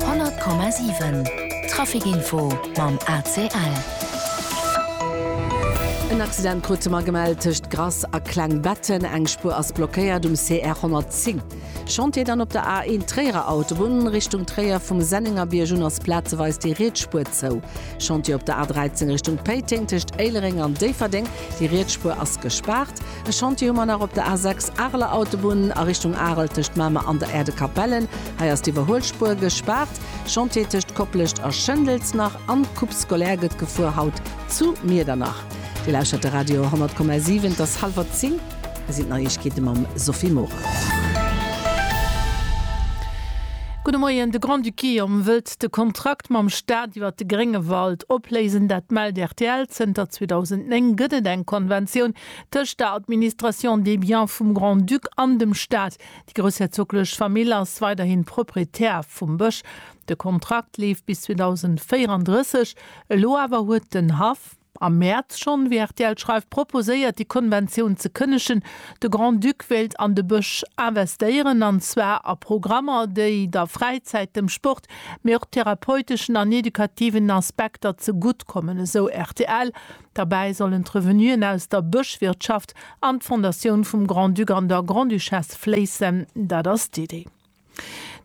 100,7 Traficinfo mam ACL. En Accident krute mer gemellt tëscht Grass a Klengbetten. Eng Spuer ass blockéiert um CR 110. Chantier dann op der A1 Tréierer Autobunn. Richtung Tréier vum Sennengerbierg un ass plazeweis déi riets Spuer zou. Chantier op der A13 Richtung Péiteng tëscht Éilereng an Déifferdeng. Déi riets Spuer ass gespaart. E Chantier hu mer nach op der A 6, Areler Autobunn a Richtung Arel tëscht Mamer an der Aire de Capellen. Hei ass d'Iwwerhuelspuer gespaart. Chantier tëscht Koplescht a Schëndels nach an d'Coupe scolaire gëtt gefuer, haut zu Miedernach. Dir lauschtert de Radio 100,7. Et ass hallwer zéng. Hei sinn d'Neiegkeete mam Sophie Morang. Gudde Moien, De Grand-Duché om wëllt de Kontrakt mam Staat iwwer de Gréngewald opléisen. Dat mellt rtl. Zënter 2009 gëtt et eng Konventioun, Tëscht der Administration des biens vum Grand-Duc an dem Staat. Déi groussherzoglech Famill ass weiderhin Proprietär vum Bësch. De Kontrakt leeft bis 2034. Elo awer huet den Haff, am Mäerz schonn, wéi rtl schreift, proposéiert déi Konventioun ze kënnegen. De Grand-Duc wéilt an de Bësch investéieren, an zwar a Programmer, déi der Fräizäit, dem Sport, mee och therapeuteschen an edukativen Aspekter ze gutt kommen, esou rtl. Derbäi sollen d'Revenuen aus der Bëschwirtschaft an d'Fondatioun vum Grand-Duc an der Grande-Duchesse fléissen, dat ass d'Idee.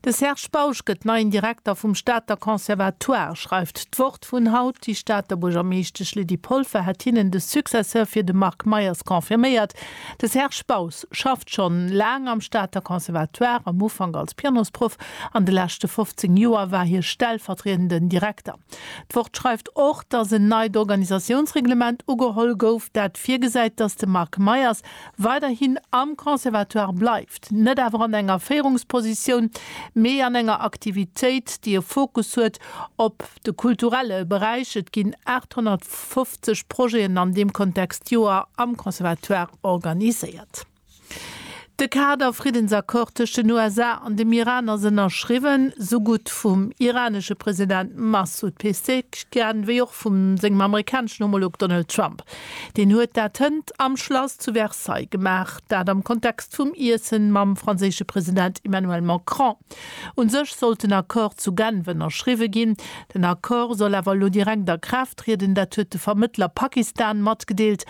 De Serge Bausch gëtt neien Direkter vum Stater Conservatoire, schreift d'Wort vun haut. Déi Stater Buergermeeschtesch Lydie Polfer hätt hinnen de Successeur fir de Marc Meyers confirméiert. De Serge Bausch schafft schonn laang am Stater Conservatoire, am Ufank als Pianosproff, an de leschte 15 Joer war hie stellvertriedenden Direkter. D'Wort schreift och, dass en neit Organisatiounsreglement ugeholl gouf, dat virgesäit, dass de Marc Meyers weiderhin am Conservatoire bleift, net awer an enger Féierungspositioun, mee an enger Aktivitéit, déi e Fokus huet op de kulturelle Beräich. Et ginn 850 Projeten an deem Kontext Joer am Conservatoire organiséiert. De Kader Friddensaccord tëscht den USA an dem Iran ass ënnerschriwwen, sou gutt vum iranesche President Massoud Pezeshkian wéi och vum sengem amerikaneschen Homolog Donald Trump. Deen huet dat hënt am Schlass zu Versailles gemaach, dat am Kontext vum Iessen mam franséische President Emmanuel Macron. U sech sollt den Accord zu Genf ënnerschriwwe ginn. Den Accord soll awer elo direkt a Kraaft trieden, dat huet de Vermëttler Pakistan matgedeelt.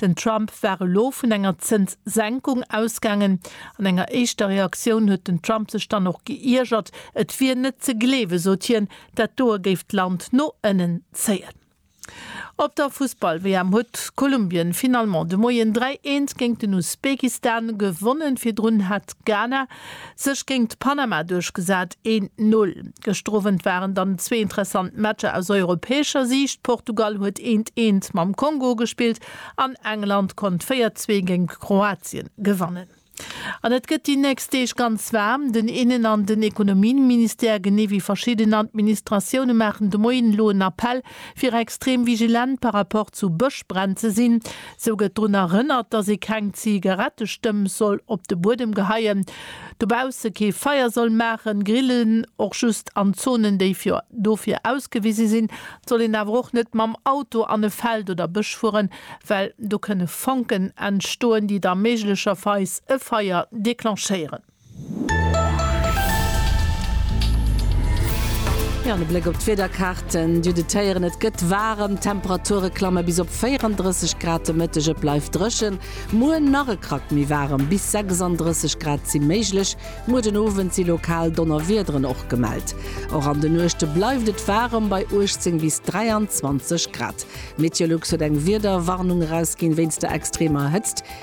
Den Trump war elo vun enger Zënssenkung ausgaangen. An enger éischter Reaktioun huet den Trump sech dann och geiergert. Et wier net ze gleewen, sot hien, dat doe géif d'Land no ënnen zéien. Op der Fussball-WM huet Kolumbien finalement de Moien 3, 1 géint den Usbekistan gewonnen. Virdrun hat Ghana Sech géingt Panama duerchgesat, een Null. Gëschter Owend waren dann zwee interessant Matcher aus europäescher Siicht, Portugal huet eent eent mam Kongo gespillt an England konnt 4 zwee géingt Kroatien gewannen. An et gëtt déi nächst Deeg ganz waarm. Den Innen an den Ekonomieministère genee wéi verschidden Administratioune maachen de Moien elo en Appell fir extrem vigilent par rapport zu Bëschbränn ze sinn, sou gëtt drun erënnert, dass ee keng Zigarettestëmp soll op de Buedem geheien, dobausse kee Feier soll maachen, grillen. Och just an Zonen, déi fir dofir ausgewise sinn, soll een awer och net mam Auto an e Feld oder Bësch fueren, well do kënne Fonken entstoen, déi da méiglecherweis e Feier declenchéieren. Jo, an e Bléck op d'Wiederkaarten du de Téieren, Et gëtt waarem, d'Temperature klamme bis op 34 Grad de Mëtteg, et bleift dréchen. Muer nach e Krack méi waarem, bis 36 Grad si méiglech. Muer den Owend si lokal Donnerwiederen och gemellt. Och an de Nuechte bleift et waarem, bei 18 bis 23 Grad. Meteolux huet eng Wiederwarnung erausginn wéinst der extremer Hëtzt.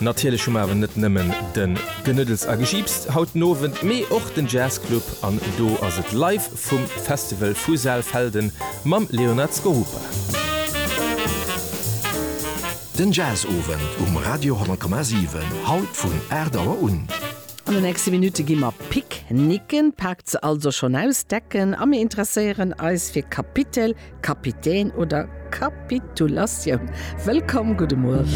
Natierlech hu mer awer net nëmmen de Genëddels a Gejiips haut den Owend, mee och den Jazzclub an do ass et live vum Festival vu Saalfelden mam Leonard Skorupa. Den Jazzowend um Radio 10,7, haut vun 8 Auer un. An de nächste Minutte gi mer pick nicken, paakt se also schonn aus, decken a mir interesséieren eis fir Kapitel, Kapitän oder Kapitulatioun. Wëllkomm, gudde Muer.